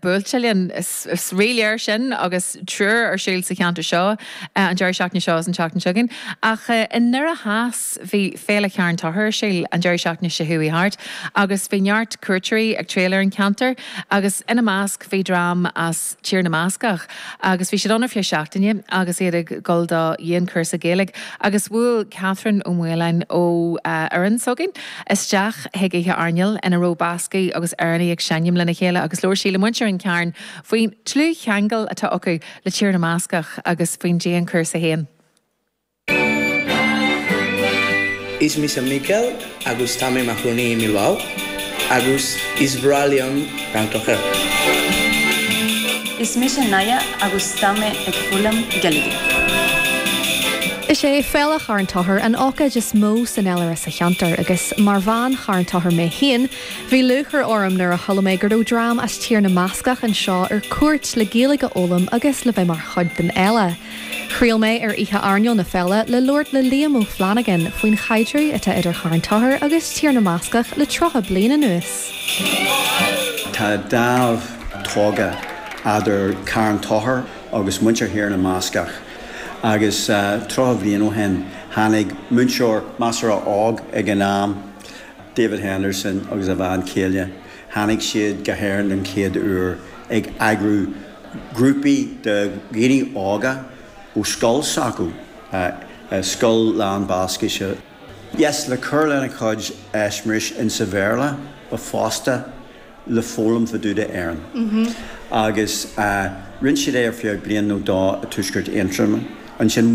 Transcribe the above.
buailte linn. Is rí-léir sin agus triúr ar siúl sa cheantar seo an deireadh seachtaine seo is an tseachtain seo chugainn. Ach i nDoire Theas bhí Féile Charn Tóchair ar siúl an deireadh seachtaine seo chuaigh thart agus bhí neart cuairteoirí ag triall ar an cheantar agus ina measc bhí dream as Tír na mBascach agus bhí siad ann ar feadh seachtaine agus iad ag dul do dhianchúrsa Gaeilge agus bhuail Catherine Ó Maoláin ó fhoireann s'againn isteach chuig oíche airneáil ina raibh Bascaigh agus Éireannaigh ag seinm lena chéile agus labhair sí le muintir an Chairn faoin dlúthcheangal atá acu le Tír na mBascach agus faoin dianchúrsa féin. Is mise Mikel agus tá mé i mo chónaí i mBilbao agus is breá liom canadh. Is mise Naia agus tá mé ag foghlaim Gaeilge. Is é Féile Charn Tóchair an ócáid is mó san fhéilire sa cheantar agus mar bhean Charn Tóchair mé féin, bhí lúchair orm nuair a chuala mé go raibh dream as Tír na mBascach anseo ar cuairt le Gaeilge a fhoghlaim agus le bheith mar chuid den fhéile. Thriall mé ar oíche airneáil na féile le labhairt le Liam Ó Flannagáin faoin chaidreamh atá idir Charn Tóchair agus Tír na mBascach le tríocha bliain anuas. Tá dáimh tógtha eadar Carn Tóchair agus muintir Thír na mBascach Agus tríocha bhliain ó shin tháinig múinteoir measartha óg ag an am, David Henderson agus a bhean chéile. Tháinig siad go hÉirinn don chéad uair ag eagrú grúpaí de dhaoine óga ó scoil s'acu, scoil lán Bascaise. Yes, le cur lena gcuid eispéiris insa Bhéarla but fosta le foghlaim fá dtaobh de Éirinn agus rinne siad é ar feadh bliain nó dó i Tuaisceart Aontroma. Ansin.